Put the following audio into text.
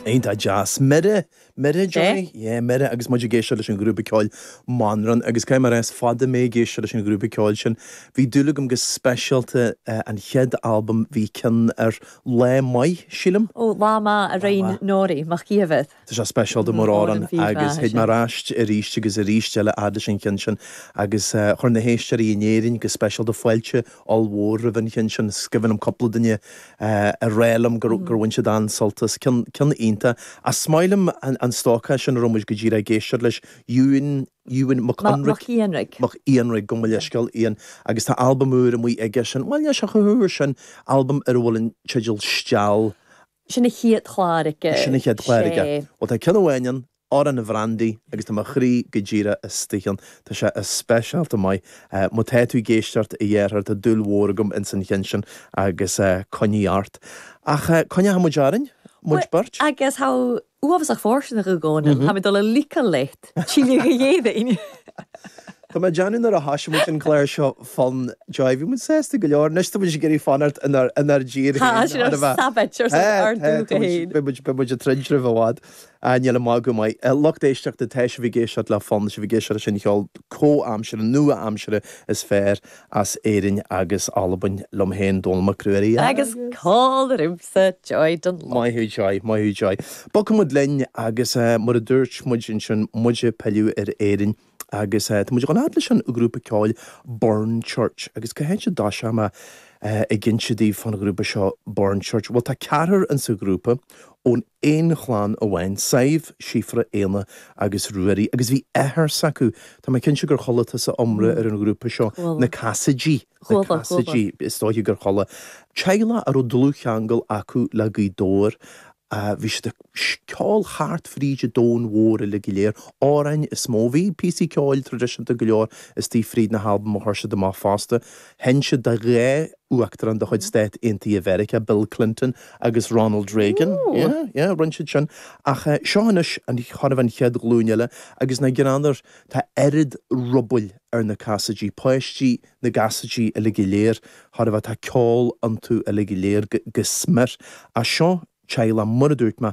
Iontach deas. Mire, mire Joy? Yeah? Yeah, mire agus muid ag éisteacht leis an ghrúpa ceoil Manrán agus caithfidh mé a rá is fada mé ag éisteacht leis an ghrúpa ceoil sin. Bhí dúil agam go speisialta an chéad albam bhí cionn air, Lá Maith, sílim? Oh, Lá Maith, Lá Maith. Norrie MacÌomhair. Tá sé speisialta mar amhrán agus théid mé aríst, aríst agus aríst eile fhad leis an cheann sin agus chuir na héisteoirí in Éirinn go speisialta fáilte ollmhór roimh an cheann sin. Is cuimhin liom cúpla duine a rá liom gur bhain siad an-sult as. Ceann iontach. Ach 's maith liom an stócach sin a raibh muid go díreach ag éisteacht leis, Ewen, Ewen Mac Eanraig, Mac Eanraig, gabh mo leithscéal Ewen, agus tá albam úr amuigh aigesean, bhuel níl sé chomh húr sin, albam ar a bhfuil an teideal Steall Sin a chéad chlár aige. Sin a chéad chlár aige. Sé. Bhuel tá ceann amháin ann, Amhrán an Bhrandaí, agus tá mo chroí go díreach istigh ann. Tá sé as speisialta maith. Má tá tú ag éisteacht a dheartháir, tá dúil mhór agam ins an cheann sin agus coinnigh ort. Ach coinneoidh muid orainn, muid beirt. Agus tá Uafásach fóirsteanach, a Dhónaill. Táim ag dul a leigeil leat. Síle Ní Dhéadaoin. Tá mé ag déanamh nuair a thoisigh muid an clár seo Fonn Joy, bhí muid sásta go leor, anois tá muid ag iarraidh fanacht inár dtír féin, Tá, sin ár Sabbath, ár dúiche féin. Beidh muid, beidh muid ag troid roimh i bhfad. Níl an magadh maith. Lucht éisteachta, tá sibh ag éisteacht le Fonn, tá sibh ag éisteacht leis an cheol comhaimseartha, nua-aimseartha is fearr. as Éirinn agus Albain, liom féin, Dónall Mac Ruairí agus. Agus còmhla riumsa, Joy Dunlop. Maith thú, Joy, maith thú, Joy. Bogfaidh muid linn agus mar a dúirt muid ansin, muid ag pilleadh ar Éirinn agus tá muid ag dul fhad leis an ghrúpa ceoil Burnchurch. Agus cá háit a dtoiseoidh mé ag inse daoibh fán ghrúpa seo Burnchurch? Bhuel, tá ceathrar in sa ghrúpa ón. aon chlann amháin, Sadhbh, Síofra, Éanna agus Ruairí, agus bhí athair s'acu, tá mé cinnte gur chuala tusa iomrá ar an ghrúpa seo, na Casaidigh, na Casaidigh, is dóiche gur chuala. Teaghlach a raibh dlúthcheangal acu le Gaoth Dobhair, bhí siad ag ceol thart fríd an domhan mhór uilig go léir, amhráin is mó, bhí píosaí ceoil traidisiúnta go leor istigh fríd na halbaim a chuir siad amach fosta. Sheinn siad do dhá uachtarán de chuid Stáit Aontaithe Mheiriceá, Bill Clinton agus Ronald Reagan. Yeah, yeah, rinne siad sin. Ach seo anois an, thar an chéad ghlúin eile, agus ná gránar, tá oiread rubaill ar na Casaidigh, páistí na gCasaidigh uilig go léir, thar a bheith, tá ceol iontu uilig go léir go smior. Ach seo teaghlach, mar a dúirt mé,